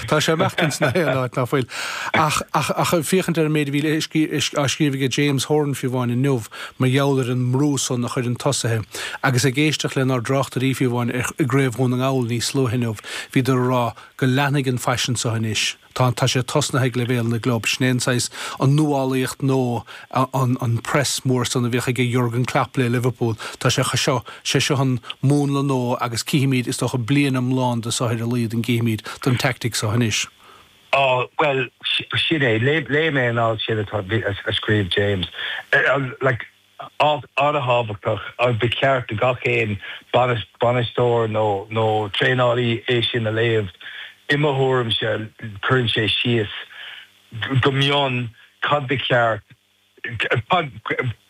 Tá sé ag imeacht insna haon áit, ná fuil? Ach ag féachaint ar an méid a bhí á scríobh ag James Horan fiú amháin inniu mar gheall ar an mbrú san a chuireann tosaithe, agus ag éisteacht lenár dtráchtairí fiú amháin i gCraobh Dhún na nGall níos luaithe inniu, bhíodar ag rá go leanfaidh an faisean seo anois. Tá sé tosnaithe ag leibhéal na gclub, sin é an saghas, an nuálaíocht, nó, an press mór san a bhíodh ag Jurgen Klopp le Liverpool, tá sé seo, sé seo an múnla nó agus cífimid, is dócha bliain iomlán de sara luíonn, an gcífimid don tactic seo anois. Á, bhuel, sin é, léigh mé an alt sin atá, a scríobh James. Like, alt an-thábhachtach, agus ba cheart do gach aon bainisteoir nó nó traenálaí é sin a léamh, i mo thuairimse, cuireann sé síos, go mion cad ba cheart, cad,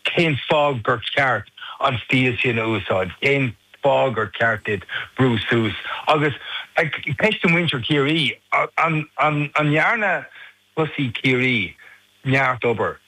cén fáth gur cheart an stíl sin a úsáid, cén fáth gur cheart duit brú suas. Agus ceist do mhuintir Chiarraí, an ndearna tosaithe Chiarraí neart obair?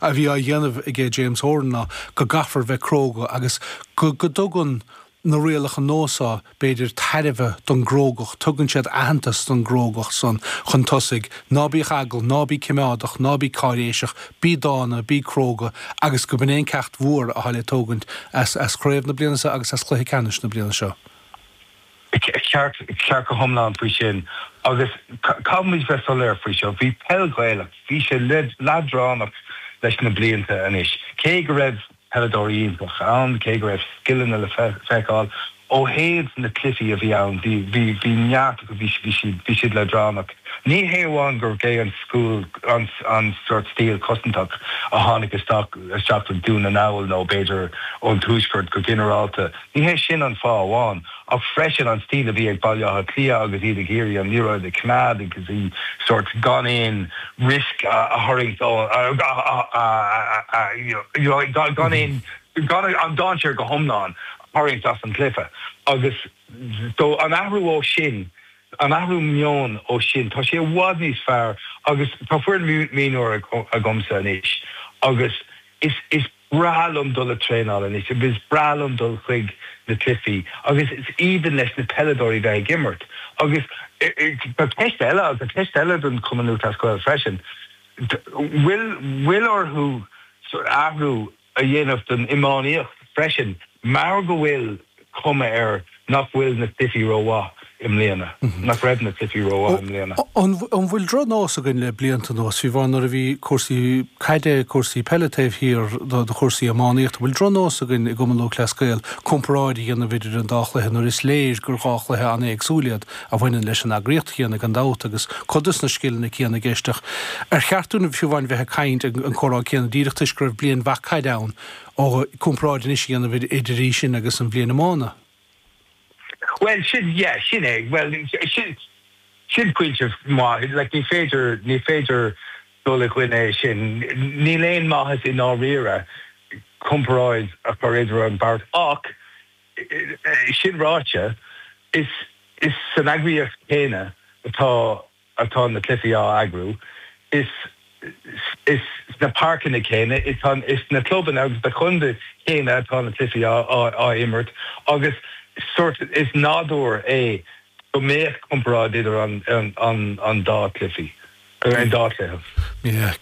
a bhí á dhéanamh aige James Horan ná go gcaithfear bheith cróga agus go dtugann na rialacha nua so, b'fhéidir, tairbhe don gcrógacht, tugann siad aitheantas don gcrógacht san chun tosaigh, ná bíodh eagla, ná bí cimeádach, ná bí cáiréiseach, bí dána, bí cróga agus gurb in é an ceacht mhór atá le tógaint as chraobh na bliana seo agus as cluiche ceannais na bliana seo. Ceart, ceart go hiomlán faoi sin. Agus caithfimid bheith soiléir faoi seo, bhí peil Ghaelach, bhí sé leadránach leis na blianta anois. Cé go raibh peileadóirí iontach ann, cé go raibh scileanna le feiceáil, ó thaobh na cluichí a bhí ann, bhí, bhí, bhí neart acu, bhí, bhí siad, bhí siad leadránach. Ní hé amháin gur b'é an school, an, an sort stíl cosantach a tháinig isteach, isteach go Dún na nGall nó b'fhéidir ón tuaisceart go ginearálta, Ní hé sin an fáth amháin ach freisin an stíl a bhí ag Baile Átha Cliath agus iad ag iarraidh an liathróid a choimeád agus í sórt gan aon risk a tharraingt ó you know gan aon gan an dainséar go hiomlán a tharraingt as an gcluiche agus so an athrú ó sin, an athrú meoin ó sin, tá sé i bhfad níos fearr agus tá foireann mhionúr agamsa anois agus is is. breá liom dul ag traenáil anois agus is breá liom dul chuig na cluichí agus is aoibhinn leis na peileadóirí bheith ag imirt agus tá ceist eile agus tá ceist eile don Chumann Lúthchleas Gael freisin, bhfuil bhfuil orthu athrú a dhéanamh don iománaíocht freisin mar go bhfuil. cuma air nach bhfuil na cluichí rómhaith i mbliana, nach raibh na cluichí rómhaith i mbliana. An bhfuil drochnós againn le blianta anuas, fiú amháin nuair a bhí cúrsaí caide, cúrsaí peile taobh thiar do chúrsaí iománaíochta, an bhfuil drochnós againn i gCumann Lúthchleas Gael comparáid a dhéanamh idir an dá chluiche nuair is léir gur dhá chluiche an-éagsúil iad a bhaineann leis an eagraíocht chéanna gan dabht agus cuid de sna scileanna céanna i gceist ach ar cheart dúinn fiú amháin bheith ag caint an comhrá céanna díreach toisc go raibh bliain mhaith caide ann An comparáid anois a dhéanamh idir í sin agus an bhliain iomána? Bhuel, sin, yeah, sin é. Bhuel, sin, sin pointe maith. Like, ní féidir, ní féidir dul i gcoinne é sin. Níl aon maitheas i ndáiríre comparáid a chur idir an bheirt. Ach, sin ráite, is, is san eagraíocht chéanna atá. atá na cluichí á eagrú. Is sna páirceanna céanna, is sna clubanna agus sna contaetha céanna atá na cluichí á imirt agus sórt, is nádúr é go mbeadh comparáid idir an dá cluichí, an dá cluiche.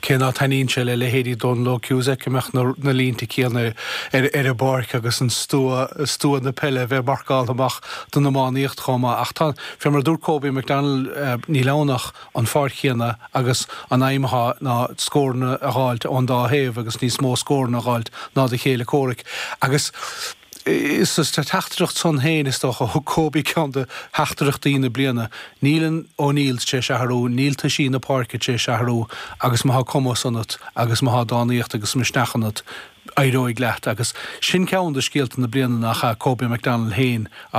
Cé ná taitníonn sé le leithéidí Dónal Óg Cusack go mbeadh na línte céanna ar an bpáirc agus an stua, stua na peile a bheith marcáltha amach don iománaíocht chomh maith ach tá an Fé mar a dúirt Kobe McDonald níl ann ach an pháirc chéanna agus an aidhm athá ná scóranna a dh'fháilt ón dá thaobh agus níos mó scóranna a dh'fháilt ná do chéile comhraic. Agus is sa teachtaireacht san féin, is dócha, thug Kobe ceann de theachtaireachtaí na bliana, níl an O'Neills tréis athrú, níl toisí na páirce tréis athrú agus má thá cumas ionat agus má thá dánaíocht agus misneach ionat, éireoidh leat. Agus sin ceann de scéalta na bliana nach ea Kobe McDonald féin a